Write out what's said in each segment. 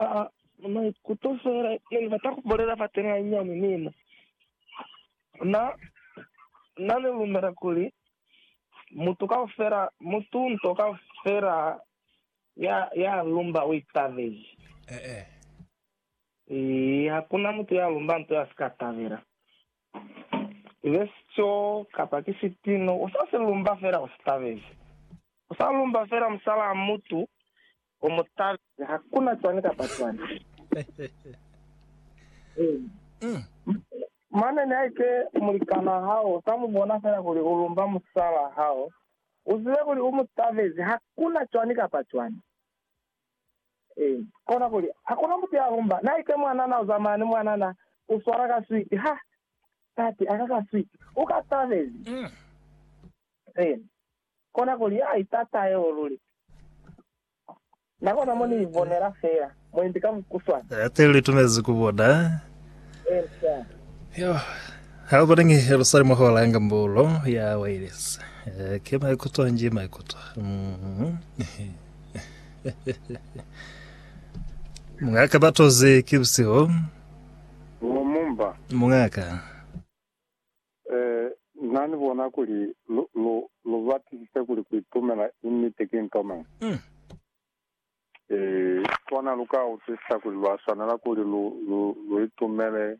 Aa, maikuto fela ne ni bata ku bolela fa teng hanyinyani mina. Na, na ni lumela kuli mutu kaufela, mutu nto kaufela ya, ya lumba o itabezi. Eh, eh. Ee, hakuna mutu ya lumba nto ya sika tabela. Ibe sico kapa ki sitino, u sa si lumba fela u sitabezi. Ku sa lumba fela musalaa mutu o mu tata. Ha ku na cwani kapa cwani. Mane nihaike mulikanaa hao sa mu bona fela kuli u lumba musalaa hao, u zibe kuli u mu tabezi ha ku na cwani kapa cwani. Kona kuli, ha ku na mutu ya lumba. Nihaike mwanana u zamaya ni mwanana, u swala ka switi, Ha, tate, a ka ka switi. U ka tabezi. Kona kuli a itata yeo luli. Na kona mo ni ibonela fela, mwendi ka mukuswana. Ate li tunezi ku bona. Yo, ha bona ngi lu sali mo hola yanga mbulo ya wireless. Eh, ke maikuto nji maikuto. Mhm. Mungaka batozi ki busihu. Wo mumba. Mungaka. Ee, Na ni bona kuli lu, lu, lu batisise kuli ku itumela i niti ki nto mañi. Mm. Ee, kona lu ka utwisisa kuli lwa swanela kuli lu, lu, lu itumele,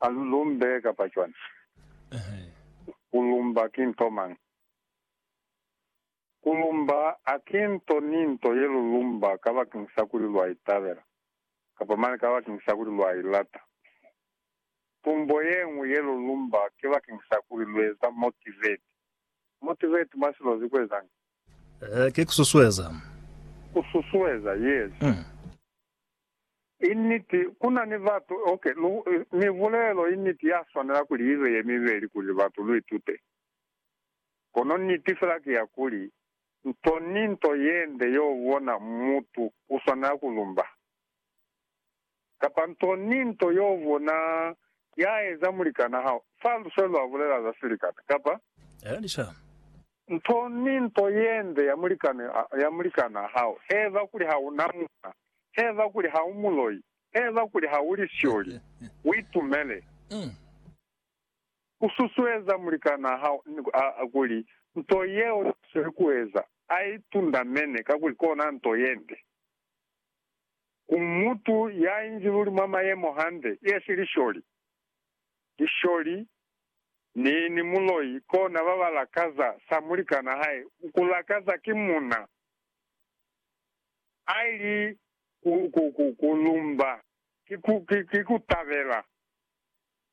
a lu lumbe kapa cwani. Ehe. Ku lumba ki nto mañi. Ku lumba ha ki nto ni nto ye lu lumba kabakeñisa kuli lwa i tabela, kapa mane kabakeñisa kuli lwa i lata. Tumbo ye ñwi ye lu lumba ki bakeñisa kuli lu eza motivate. Motivate mwa silozi ku ezañi? Ee, ki ku susueza. Ku susueza, yes. I niti, ku na ni batu, ok, lu, mibulelo i niti ya swanela kuli ibe ye mibeli kuli batu lu itute. Kono niti fela ki ya kuli, nto ni nto yende yo bona mutu u swanela ku lumba, kapa nto ni nto yo bona ya eza mulikan'a hao, fa luse lwa bulela za silikana, kapa nto ni nto yende ya mulikan'a, ya mulikan'a hao, h'eba kuli ha u na muuna, h'eba kuli ha u muloi, h'eba kuli ha u lisioli, u itumele. U susueza mulikanaa hao kuli nto yeo ya sweli kueza a i tundamene, kakuli kona nto yende ku mutu ya inzi luli mwa mayemo hande, yesi lisholi. Lisholi ni ni muloi kona ba ba lakaza sa mulikanaa hae ku lakaza ki muna a ili ku lumba ki ku tabela.